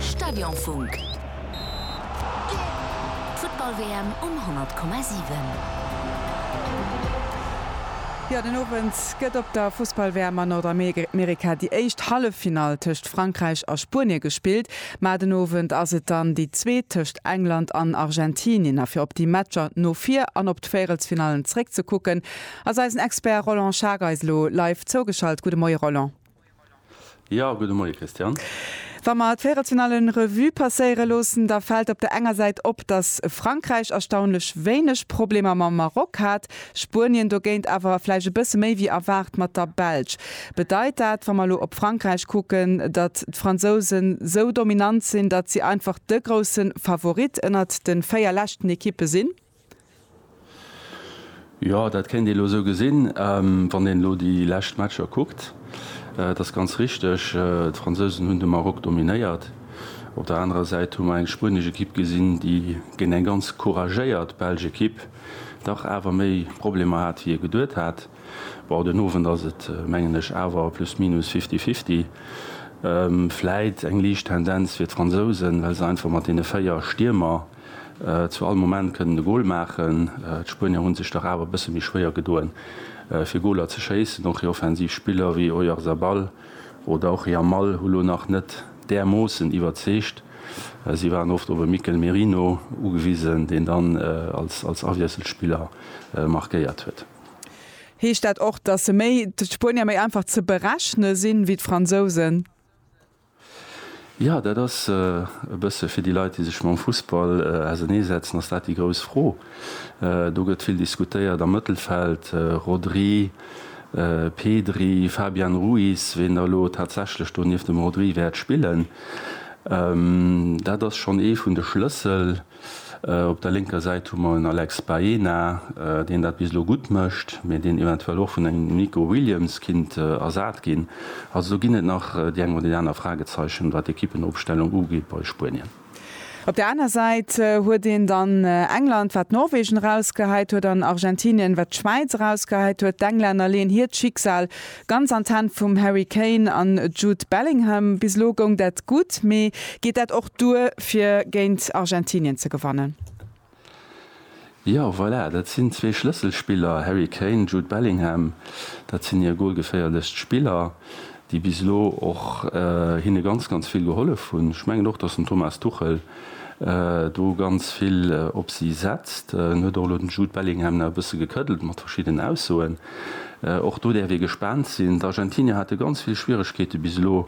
Stadionfunk. D'Futtball-WM um 100,7. Jo, den Owend gëtt op der Fussball-WM a Nordamerika déi éischt Halleffinall tëscht Frankräich a Spuenie gespillt. Mä den Owend ass et dann déi zweet tëscht England an Argentinien. A fir op déi Matcher no vir an op d'Véierelsfinallen zeréckzekucken, ass eisen Expert Roland Schager eis elo live zougeschalt. Gudde Moie Roland. Jo, gudde Moie Christian. Wa mer d'Véierelfinallen Revue passéiere loossen, da fält op der enger Säit op, datt Frankräich erstaunlech wéineg Problemer mam Maroc hat, Spuenien dogéint awer vläicht e bësse méi wéi erwaart mat der Belsch. Bedeit dat, wa mer elo op Frankräich kucken, datt d'Fransouse sou dominant sinn, datt si einfach de grousse Favorit ënnert de véier leschten Ekippe sinn? Jo, dat kéint ee elo esou gesinn, wann een elo déi lescht Matcher kuckt. Et ass ganz richteg, d'Fransousen hunn de Maroc dominéiert. Op der anerer Säit hu mer eng spuenesch Ekipp gesinn, déi géint eng ganz couragéiert belsch Ekipp dach awer méi Problemer hat, wéi ee geduet hat. Bon, den Owend ass et, mengen ech, awer plus minus fifty fifty. Vläit eng liicht Tendenz fir d'Fransousen, well se einfach mat deene véier Stiermer, Zu all Moment kënnt en e Gol maachen. D'Spuenier hu sech dach awer e bësse méi schwéier gedoen, fir Goler ze schéissen. Och hir offensiv Spiller wéi Oyarzabal oder och Yamal hu lo nach net därmoossen iwwerzeegt. Si waren oft op e Mikel Merino ugewisen, deen dann als Awiesselspiller markéiert huet. Heescht dat och, dass d'Spuenier méi einfach ze berechne sinn, wéi d'Fransousen? Jo, dat ass e bësse fir déi Leit, déi sech mam Fussball auserneesetzen, ass dat déi grouss Fro. Do gëtt vill diskutéiert am Mëttelfeld, Rodri, Pedri, Fabian Ruiz, wien da elo tatsächlech do nieft dem Rodri wäert spillen. Dat ass schonn ee vun de Schlëssel. Op der lénker Säit hu mer en Alex Baena, deen dat bis elo gutt mécht, mee deen eventuell och vun engem Nico Williams kinnt ersat ginn. Also do ginn et nach déi eng oder déi aner Fragezeichen, wat d'Ekippenopstellung ugeet bei Spuenien. Op der aner Säit huet een dann England, wat Norwegen erausgehäit huet, an Argentinien, wat d'Schwäiz erausgehäit huet. D'Englänner leeën hiert Schicksal Ganz an d'Hänn vum Harry Kane an Jude Bellingham. Bis elo goung dat gutt, mee geet dat och duer fir géint Argentinien ze gewannen? Jo, voilà, dat sinn zwee Schlësselspiller, Harry Kane, Jude Bellingham. Dat sinn hir golgeféierlechst Spiller, déi bis elo och hinne ganz, ganz vill gehollef hunn. Ech mengen och, datt den Thomas Tuchel do ganz vill op si setzt. En huet och elo den Jude Bellingham nach e bësse gekëddelt mat verschiddenen Aussoen. Och do däerf ee gespaant sinn. D'Argentinier hate ganz vill Schwieregkeete bis elo,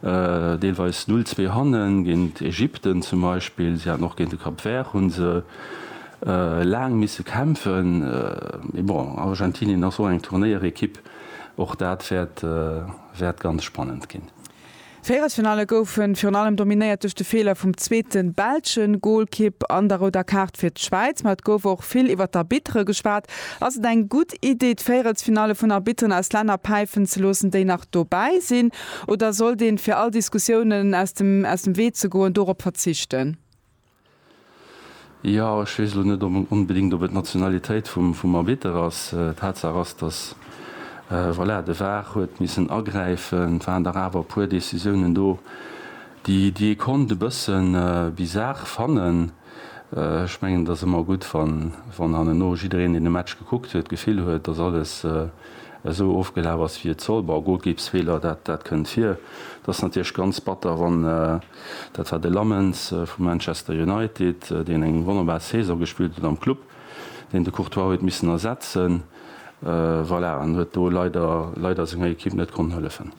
deelweis null zwee hannen, géint Ägypten zum Beispill. Si haten och géint de Cap Vert hu se laang misse kämpfen. Mee bon, Argentinien ass och eng Turnéierekipp, och dat wäert ganz spannend ginn. Véierelsfinalle goufen virun allem dominéiert duerch de Feeler vum zweeten belschen Goalkipp an der rouder Kaart fir d'Schwäiz. Ma et gouf och vill iwwert d'Arbitre geschwat. Ass et eng gutt Iddi d'Véierelsfinalle vun Arbitteren aus Länner päifen ze loossen déi nach dobäi sinn? Oder sollt een fir all Diskussiounen aus dem Wee ze goen dorop verzichten? Jo, ech weess elo net onbedéngt, ob et d'Nationalitéit vum Arbitter ass. Tatsaach ass, datt, voilà, de var huet missen agräifen. Et waren dach awer e puer Decisiounen do, déi ee konnt e bësse bizar fannen. Ech mengen, et ass ëmmer gutt, wann hanneno jiddereen, deen de Match gekuckt huet, d'Gefill huet, datt alles esou ofgelaf ass, wéi et soll. Bon, Golkippsfeeler, dat kënnt vir. Et ass natierlech ganz batter, wann. Dat war de Lammens vu Manchester United, deen eng wonnerbar Saison gespillt huet am Club, deen de Courtois huet missen ersetzen, voilà, an huet do leider, leider senger Ekipp net konnt hëllefen.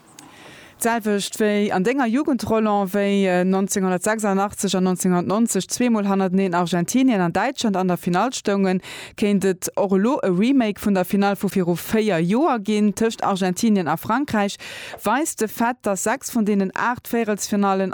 D'selwecht wéi an denger Jugend, Roland, wéi 1986 an 1990 zweemol hannerteneen Argentinien an Däitschland an der Finall stoungen, kéint et och elo e Remake vun der Finall vu viru véier Joer ginn tëscht Argentinien a Frankräich, weist de Fait, dass sechs vun deenen aacht Véierelsfinallen